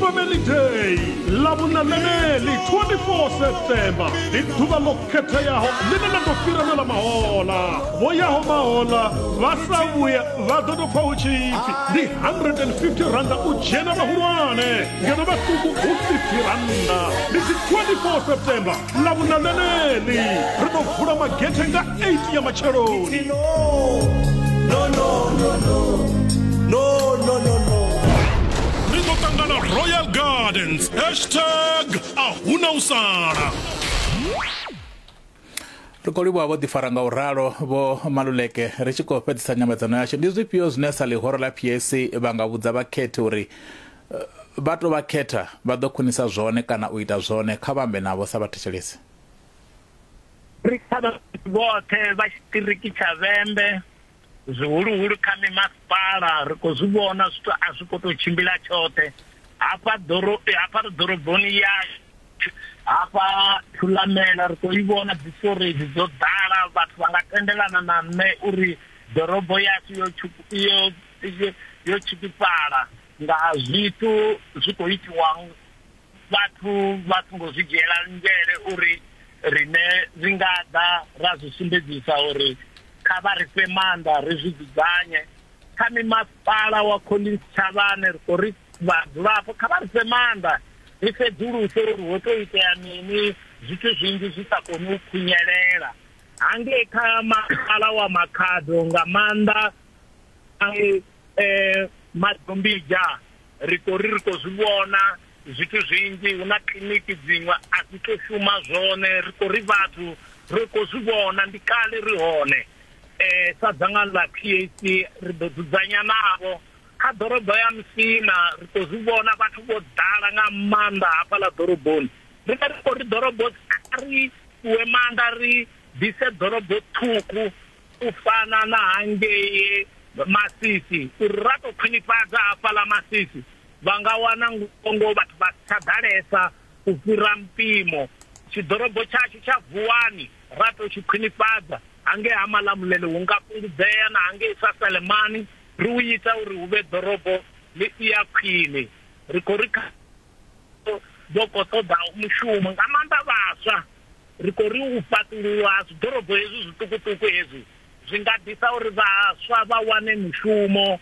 Family Day ḽa vhunameli 24 September ndi ḓuvha ḽo khetheaho ḽine ḽa ḓo fhira na ḽa mahola vho yaho mahola vha sa vhuya vha ḓo tou pfa hu tshi pfi ndi 150 randa u dzhena vhahulwane ngeno vhaṱuku hu 50 randa ndi dzi 24 September ḽa vhuna ḽeneḽi ri ḓo vula magethe nga 8 ya matsheloni no, no, no, no, no. No, no, no, no. ri ḓo ṱangana royal gardens hashtag a huna u sala ri khou livhuwa vho ḓifara nga u ralo vho maluleke ri tshi khou fhedzisa nyambedzano yashu ndi zwifhio zwine sa ḽihoro ḽa pac vha nga vhudza vhakhethi uri vha tou vha khetha vha ḓo khwinisa zwone kana u ita zwone kha vha ambe navho sa vhathetshelesi ri kha vhoṱhe vha tshiṱiriki tsha vhembe zwihuluhulu kha mimasipala ri khou zwi vhona zwithu a zwi khou tou tshimbila tshoṱhe hafha ḓoro hafha ri ḓoroboni ya hafha thulamela ri khou i vhona dzi storage dzo ḓala vhathu vha nga tendelana na nṋe uri ḓorobo yashu yo yo yo tshikifhala nga zwithu zwi khou itiwa vhathu vha songo zwi dzhiela nzhele uri rine ri nga ḓa ra zwi sumbedzisa uri kha vha ri fhe maanḓa ri zwi dzudzanye kha mimasipala wa collins tshavhane ri khou ri vhadzulapo kha vha ri fhe maanḓa ri sedzuluse uri ho tou itea mini zwithu zwinzhi zwi sa koni u khunyelela hangei kha masipala wa makhado nga maanḓa a mu eh, madombidzha ri khou ri ri khou zwi vhona zwithu zwinzhi hu na kiḽiniki dziṅwe a dzi to shuma zwone ri khou ri vhathu ri khou zwi vhona ndi kale ri hone um sa dzangano ḽa p a c ri ḓo dzudzanya navho kha ḓorobo ya musina ri khou zwi vhona vhathu vho ḓala nga maanḓa hafha ḽa ḓoroboni ri vha ri khou ri ḓorobo kha ri fhiwe maanḓa ri ḓise ḓorobo ṱhukhu u fana na hangei masisi uri ra tou khwinifhadza hafhaḽa masisi vha nga wana ngongo vhathu vha si tsha ḓalesa u fhira mpimo tshiḓorobo tshashu tsha vuwani ra tou tshi khwinifhadza hangei ha malamulele hu nga fhungudzea na hangei sa salemani ri u ita uri hu vhe ḓorobo ḽi si ya khwine ri khou ri dzo khou ṱoḓa mushumo nga maanḓa vhaswa ri khou ri u fhaṱululwa ha zwiḓorobo hezwi zwiṱukuṱuku hezwi zwi nga ḓisa uri vhaswa vha wane mushumo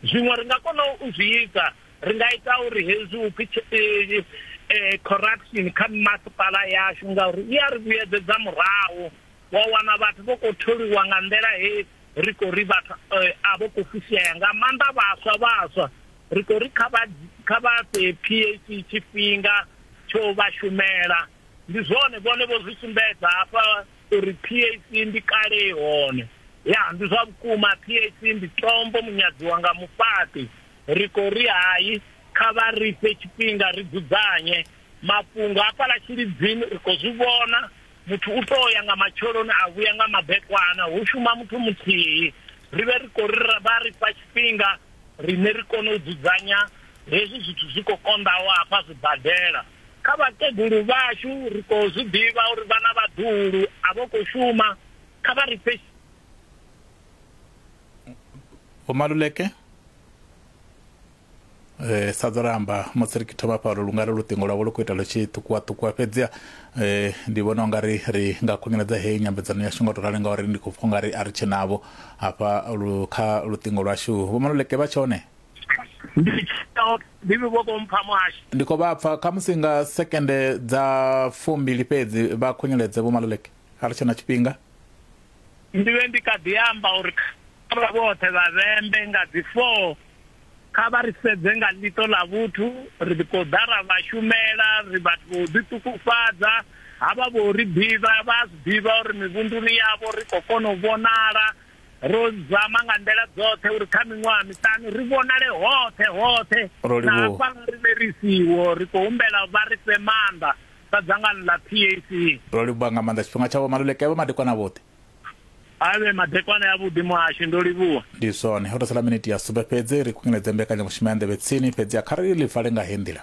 zwiṅwe ri nga kona u zwi ita ri nga ita uri hezwi u pfi eh, eh, corruption kha masipala yashu ngauri i a ri vhuyedzedza murahu wa wana vhathu vho khou tholiwa nga nḓila he ri khou ri vhathu eh, a vho khou fusea nga maanḓa vhaswa vhaswa ri khou ri kha vha kha vha fhe PAC tshifhinga tsho vha shumela ndi zwone vhone vho zwi sumbedza hafha uri PAC ndi kale i hone ya ndi zwa vhukuma PAC ndi tombo munyadziwa nga mufhaṱi ri khou ri hai kha vha ri fhe tshifhinga ri dzudzanye mafhungo hafhaḽa tshilidzini ri khou zwi vhona Muthu u tou ya nga matsheloni a vhuya nga madekwana, hu shuma muthu muthihi. Ri vhe ri khou ri vha ri fha tshifhinga riṋe ri kone u dzudzanya hezwi zwithu zwi khou konḓaho hafha zwibadela. Kha vhakegulu vhashu ri khou zwi ḓivha uri vha na vhaḓuhulu a vho khou shuma, kha vha ri fhe. Vho Maluleke. eh sa ḓo ramba musi ri thoma fhano lu nga ri luṱingo lwavho lu khou ita lu tshi ṱukuwa ṱukuwa fhedziha eh ndi vhona unga ri ri nga khunyeledza heyi nyambedzano yashu nga u to rali ngauri ndi khou pfha unga ri a ri tshe navho hafha lu kha luṱingo lwashu vho maluleke vha tshone ndi tsheo bibi vho vho mpha muhasho ndi khou vha pfha kha musi nga sekende dza fumbili fhedzi vha khunyeledze vho maluleke a ri tshe na tshifhinga ndi vhe ndi kha ḓi amba uri kha vha vhoṱhe vha vhembe nga dzi 4 Kha vha ri sedze nga ḽiṱo ḽa vhuthu, ri ḓi tou ḓa ra vha shumela, ri vhathu vha u ḓiṱukufhadza. Havha vho ri ḓivha, vha a zwi ḓivha uri mivhunduni yavho ri khou kona u vhonala. Ro zama nga nḓila dzoṱhe uri kha miṅwaha miṱanu ri vhonale hoṱhe hoṱhe na hafha nga riṋe ri siho. Ri khou humbela vha ri fhe maanḓa sa dzangano ḽa PAC. Ro livhuwa nga maanḓa tshifhinga tshavho, Maluleke avha madekwana vhoṱhe. a vhe madekwana ya vhuḓi muhasho ndo livhuwa ndi zwone ho to sala miniti ya sumbe fhedzi ri khunyeledze mbekanyamushumo ya nḓevhe tsini fhedzi a kha ri ḽi vale nga he nḓila